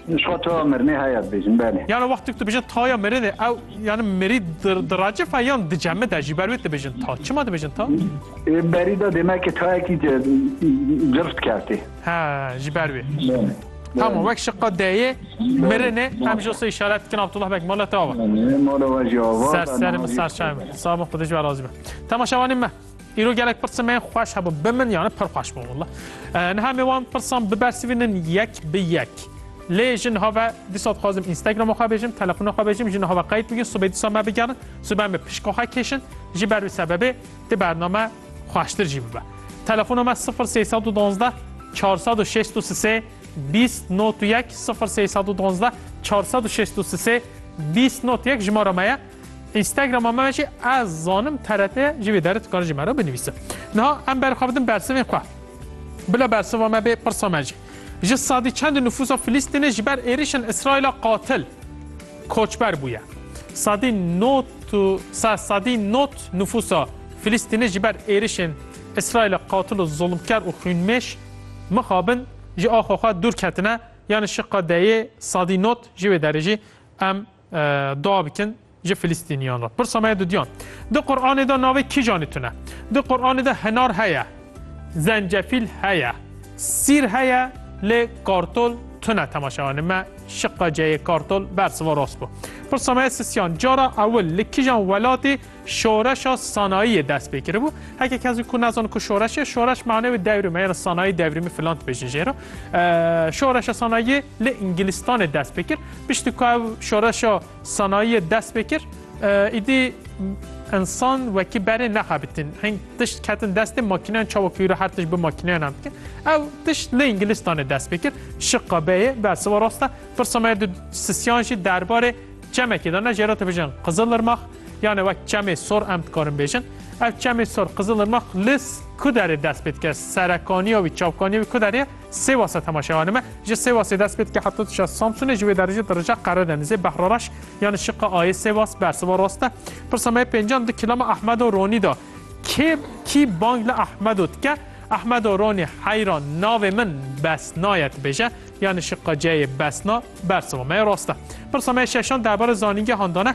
Nişka taya mirinê heye dibêjin belê. Yano wextê ku dibêjin taya mirinê ew yani mirî diracif e yan dicemid e jî ber wê dibêjin ta. Çima dibêjin ta? Ê berî de demekê tayekî cif dikertê. He ji ber wê. Tamam wek şiqa deyê mirinê em ji sê işaret dikin Abdullah bek mala te ava. Mala we jî ava. Ser serê min serçayê min. Sağ bin xwedê ji we razî be. Temaşevanê me. Îro gelek pirsa me xweş hebûn. Bi min yani pir xweş bûn walla. Niha me wan pirsan bibersivînin yek bi yek. Lê ji niha ve dîsa dixwazim Instagram'a xwe bêjim, telefona xwe bêjim, ji niha ve qeyd bikin, sibê dîsa me bigerin, sibê me pişka xwe kêşin, ji ber wî sebebê di bername xweştir jî bibe. Telefona me 0312 463 20 not 1 0312 463 20 not 1 jimara me ye. Instagram'a me jî ez zanim TRT ji vê derê dikare ji me re binivîse. Niha em berxwebidin bersivên xwe. Bila bersiva me bê pirsa me jî. Ji sedî çend nifûsa Filîstînê ji ber êrişên Îsraîla qatil, koçber bûye. Sedî not sedî not nifûsa Filîstînê ji ber êrişên Îsraîla qatil û zulmker û xwînmêş mixabin ji axa xwe dûr ketine. Yani şiqa deyê sedî not ji vê derê jî em Dua bikin ji Filîstîniyan re. Pirsa me ye dudiyan. Di Quranê de navê kîjanê tune? Di Quranê de hinar heye, zencefîl heye, sîr heye lê kartol tune temaşewanê me şiqa ceyê kartol bersiva rast bû. Pirsa me ye sisiyan cara ewil li kîjan welatê Şoreşa sanayiyê dest pê kiribû. Heke kes ku nezan ku şoreş ye, şoreş mane wê devrime ya sanayî devrîmî filan dibêjin jê re. Şoreşa sanayiyê li Îngilistanê dest pê kir. Piştî ku ev şoreşa sanayiyê dest pê kir, îdî insan wekî berê nexebitin. Hing tişt ketin destê makîneyan çawa ku îro her tişt bi makîneyan em dikin. Ew tişt li Îngilistanê dest pê kir. Şiqa beyê be siva rast e. Pirsa me di sisiyan jî derbarê çemekê de ne jê re dibêjin Qizilirmax, Yane wek çemê sor em dikarin bêjin. Ev çemê sor Qizilirmaq li ku derê dest pê dike? Serekaniya wî, çavkaniya wî ku derê ye? Sêwasa temaşeya me ji Sêwasê dest pê dike heta dişa Samsunê ji wê derê jî dirija Qeredenizê, Behrareş yani şiqa ayê Sêwas bersiva rast e. Pirsa me yê pêncan di kîlama Ehmedo Ronî de kê kî bang li Ehmedo dike? Ehmedo Ronî heyra navê min Besna ye dibêje yani şiqa ceyê Besna bersiva me yê rast e. Pirsa me yê şeşan derbarê zanîngehan de ne.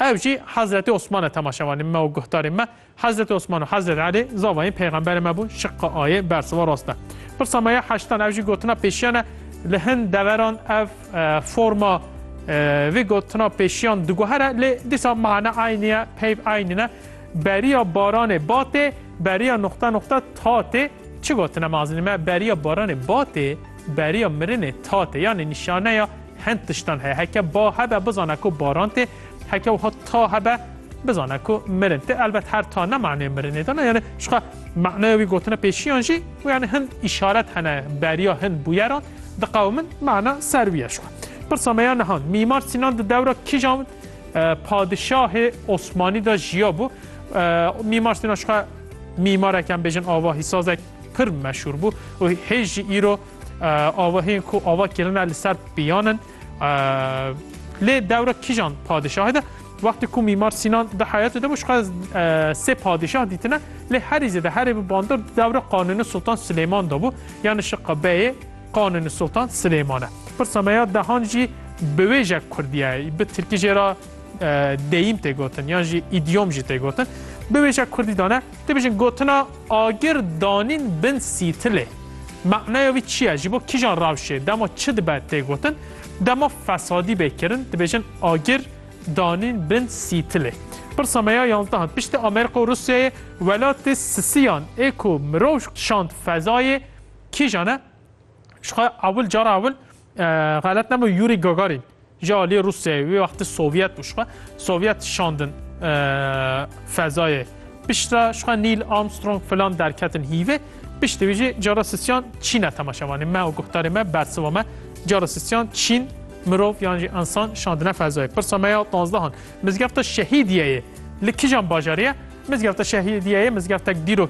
Ev jî Hezretê Osman e temaşevanê me û guhdarê me. Hezretê Osman û Hezretê Elî zavayên peyxemberê me bûn şiqqa ayê bersiva rast e. Pirsa me ya heştan ev jî gotina pêşiyan e li hin deveran ev forma vê gotina pêşiyan diguhere lê dîsa mana eynî ye peyv eynî ne beriya baranê batê beriya nuqta nuqta tatê çi gotine me azînî me beriya baranê batê Beriya mirinê tat e yanî nîşaneya hend tiştan heye. Heke ba hebe bizane ku baran tê, heke wiha ta hebe bizane ku mirin tê. Elbet her ta ne maneyê mirinê dana yanî jixwe maneya wî gotine pêşiyan jî û yanî hin îşaret hene beriya hin bûyeran diqewimin mana ser wî ye. Jixwe pirsa me ya niha Mîmar Sînan di dewra kîjan padişahê Osmanî de jiya bû? Mîmar Sînan jixwe mîmarek yan bêjin ava hîsazek. pir meşhur bû û hêj jî îro avahiyên ku ava kirine li ser piyanin lê dewra kîjan padişahê de wextê ku mîmar Sînan di heyatê de bû xwe sê padişah dîtine lê herî zêde herê bi bandor dewra qanûnê Sultan Silêman de bû yani şiqa beyê qanûnê Sultan Silêman e. Pirsa me ya dehan jî bi wê je kurdiyayê bi tirkî jê ra Deyîm tê gotin yan jî îdyom jî tê gotin. Biwêje Kurdî dane dibêjin gotina agir danîn bin sîtilê. Manaya wî çi ye ji bo kîjan rewşê dema çi dibe tê gotin dema fesadî bê kirin dibêjin agir danîn bin sîtilê. Pirsa me ya yanzde hat piştî Amerîka û Rûsyayê welatê sisiyan ê ku mirov şand fezayê kîjan e? Ji xwe ewil cara ewil Xelet nebû Yuri Gagarin ji aliyê Rûsyayê wê wextî Sovyet bû şixwe Sovyet şandin fezayê. Piştre şixwe Nîl Armstrong filan derketin hîvê. Piştî wî jî cara sisyan Çîne temaşe vanê me û guhdarê me bersiva me cara sisyan Çîn mirov yan jî insan şandine fezayê. Pirsa me ya tanzdehan mizgefta şehîdiyeyê li kijan bajarî ye? Mizgefta şehîdiyeyê mizgeftek dîrok